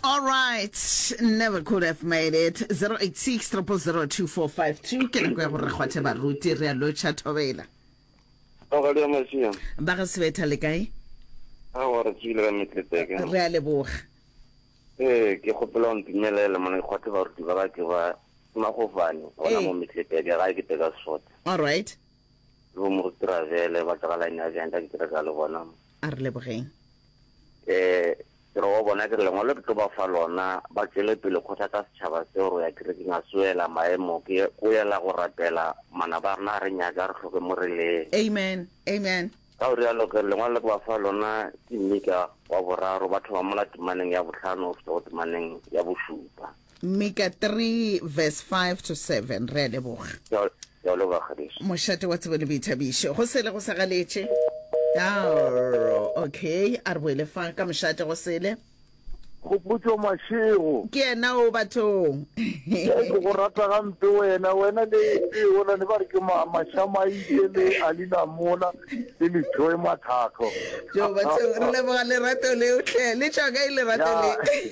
All right, never could have made it. 086 0002452 ke nako ya gore re kgwathe baruti re a lotšha thobela Mogadi wa Masia. ba ga sebetha le kae Ha wa re tsile ka metletseke. re a leboga Eh, ke gopela o ntumelele mona ke kgwathe baruti ba ka ke ba magofane gona Eh. mo metletseke ga ke teka sota. all right Lo mo travele ba tla la ina janta ke tla ka le bona. a re lebogeng eh re wa bona ke lengwalo ke tlo ba fa lona ba tšwele pele kgotha ka setšhaba seo re ya kerekeng a soela maemo ke go yela go rapela mana ba rena re nyaka re tlhoke mo re leng amen amen ka o rialo ke lengwalo le ke ba fa lona ke mmika wa boraro ba thoma mola temaneng ya botlhano o feta go temaneng ya bošupa Mika 3 verse 5 to 7 Re a leboga. Re a leboga ganeso. Mošate wa tsebo le boithabišo. Go sele go sa galetše. Arro, okay, a re boele fa ka mošate go sele. Kgopotšo Mašego. Ke yena o bathong. Ke go rata gampe wena, wena le le yola ne ba re ke ma Mashamaile le Alina Mola le le Joy Mathakho. Jo bathong re leboga lerato leo hle le tšwa ka e lerato le.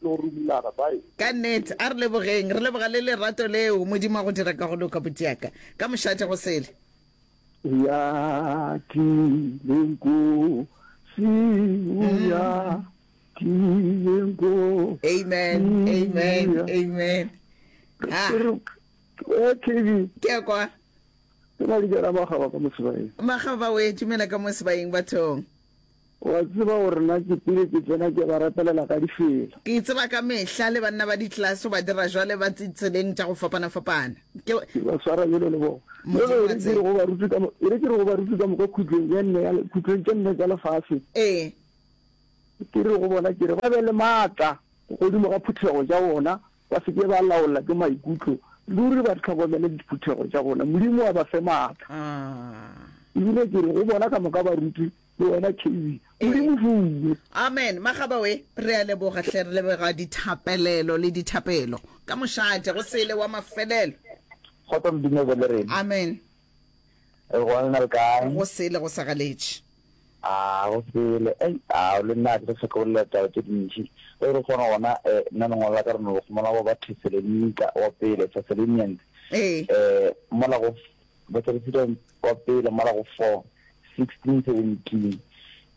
tlo rumulana. Bye. Ka net a re lebogeng re leboga le lerato leo modimo a go dira ka go loka buti yaka ka mošate go sele. Ya tlile nkosi o ya tlile nkosi Amen, amen, amen. Ha, Eh, TV, ke ya kwa ke na le jara magaba ka mosebane. magaba we tumela ka mo sebaeng bathong. O a tseba gore na ke pele ke tsena ke ba rapelela ka difelo. Ke tseba ka mehla le banna ba ditlelaso ba dira jwale ba tseleng tša go fapana-fapana. Ke. Ke ba swara bjalo le bona. Modimo wa tseba. E re ke re go baruti ka moka khutlong ye nne ya, khutlong tše nne tša lefase. Ee. Ke re go bona ke re ba be le matla godimo ga phuthego tša bona Ba se ke ba laola ke maikutlo, ruri ba hlokomele diphuthego tša bona. Modimo a ba fe maatla. Ebile ke re go bona ka moka baruti le wena KB, Modimo fuwe. Amen. Magaba we, re a leboga hle, re lebega dithapelelo le dithapelo. Ka mošate, go sele wa mafelelo. Kgotso Modimo o be le rena. Amen. Re gona le na le kae? Go sele go sa galetše. A go sele. Ei, a le nna ke re se go lela taba tše dintši. Ge re kgona gona eh nna lengwalo la ka re no gomela go ba Thesalonika wa pele, Thessalonians. Eh. Eh mola go ba Thessalonians wa pele mola go 4, 16, 17.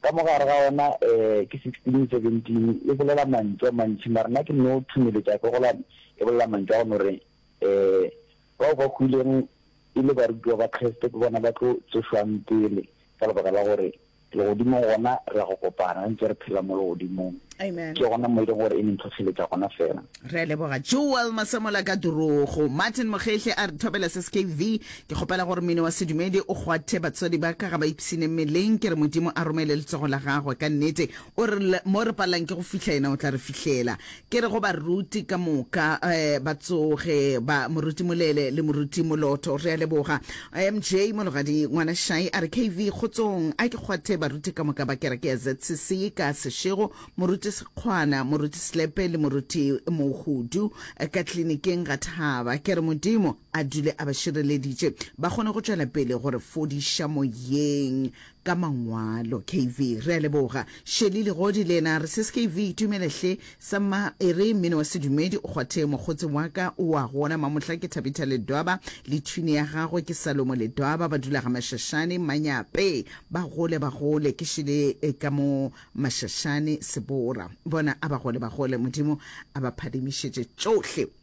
Ka mo gare ga ona eh ke 16, 17 e bolela mantšu a mantši mara nna ke no thumeletša ke gola e bolela mantšu a go no re eh Bao ba hwileng e le barutiwa ba Kriste ke bona ba tlo tsošwang pele, ka lebaka la gore legodimong gona re ya go kopana re ntse re phela mo legodimong. Amen. Ke gona mo e leng gore e neng tlhotlheletša gona fela. Re a leboga Joel Masemola ka Durugo. Martin Mokgehle a re thobela se skv, Ke kgopela gore mmino wa sedumedi o kgwathe batswadi ba ka ga ba ipshine mmeleng. Ke re Modimo a romele letsogo la gagwe. Ka nnete O re, Le mo re palelang ke go fihla, yena o tla re fihlela. Ke re go baruti ka moka um ba tsoge, ba, Moruti Molele le Moruti Moloto, re a leboga. MJ Mologadi Ngwana Shai a re, KV, kgotsong. A ke kgwathe baruti ka moka ba kereke ya ZCC ka sešego, Moruti Sekgwana, Moruti Slepe le Moruti Mohudu ka tlilinikeng ga Thaba. Ke re Modimo a dule a ba šireleditše, ba kgone go tšwela pele go re fodiša moyeng. ka mangwalo. KV, Re a leboga. Shelly Legodi le yena a re, Ses KV, itumele hle. Sa Mma e re, Mmino wa sedumedi o kgwatheng mokgotse wa ka o wa gona Mamohla ke Thabitha Ledwaba le thwine ya gagwe ke Salomo Ledwaba ba dula Gamashashane, Manyape. Ba gole ba gole. Ke šele ka mo Mashashane, Sebora. Bona a ba gole ba gole. Modimo a ba phadimišetše tšohle.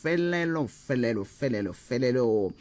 felelo felelo felelo felelo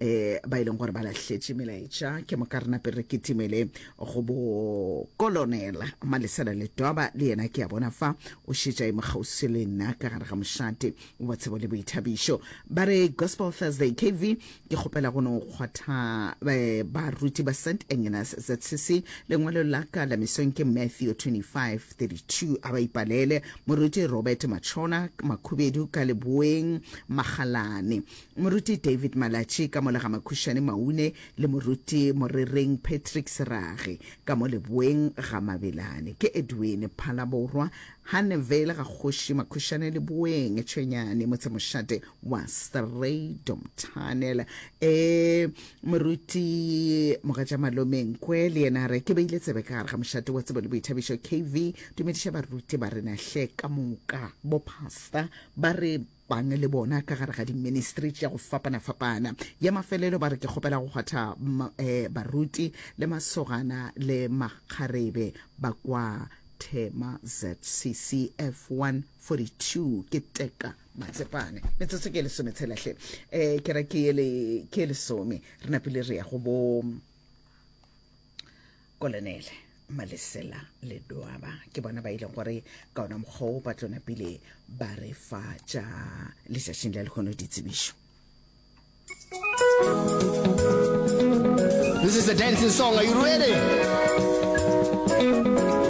e ba e leng gore ba lahletše melaetša ke mo ka rena pele re ketimele go bo kolonela malesela letwaba le yena ke a bona fa o šetša e mokgausi le nna ka gare ga mošate wa tshebo le boithabišo ba re gospel thursday kv ke kgopela go no kgwatha eh, baruti ba st agnes zcc lengwalo la ka la mesong ke matthew 2532 a ba ipalele moruti robert machona makhubedu ka leboeng magalane moruti david malatši ka molega makhušane maune le moruti morereng patrick serage ka mo leboeng ga mabelane ke edwin phalaborwa Hannevale ga kgoši Makhušane le Boeng Tšhwenyane motsemošate wa Strydom Tunnel. E moruti mogatša malome Nkwe le yena a re ke beile tsebe ka gare ga mošate wa tsebo le boithabišo KV. Dumediša baruti ba rena hle ka moka bo pasta ba re Bangwe le bona ka gare ga diministri tša go fapana-fapana. Ya mafelelo ba re, Ke kgopela go kgwatha um baruti le masogana le makgarebe ba kwa Thema ZCC F142. Ke Teka Matsepane. Metsotso ke e lesome tshela hle. Um kereke yele ke e lesome. Re napile re ya go bo. kolonele malesela le doaba ke bona ba ileng gore ka ona mokgwao ba tlona pele ba re fa tša letšatšing la lehono ditsebišo This is a dancing song. Are you ready?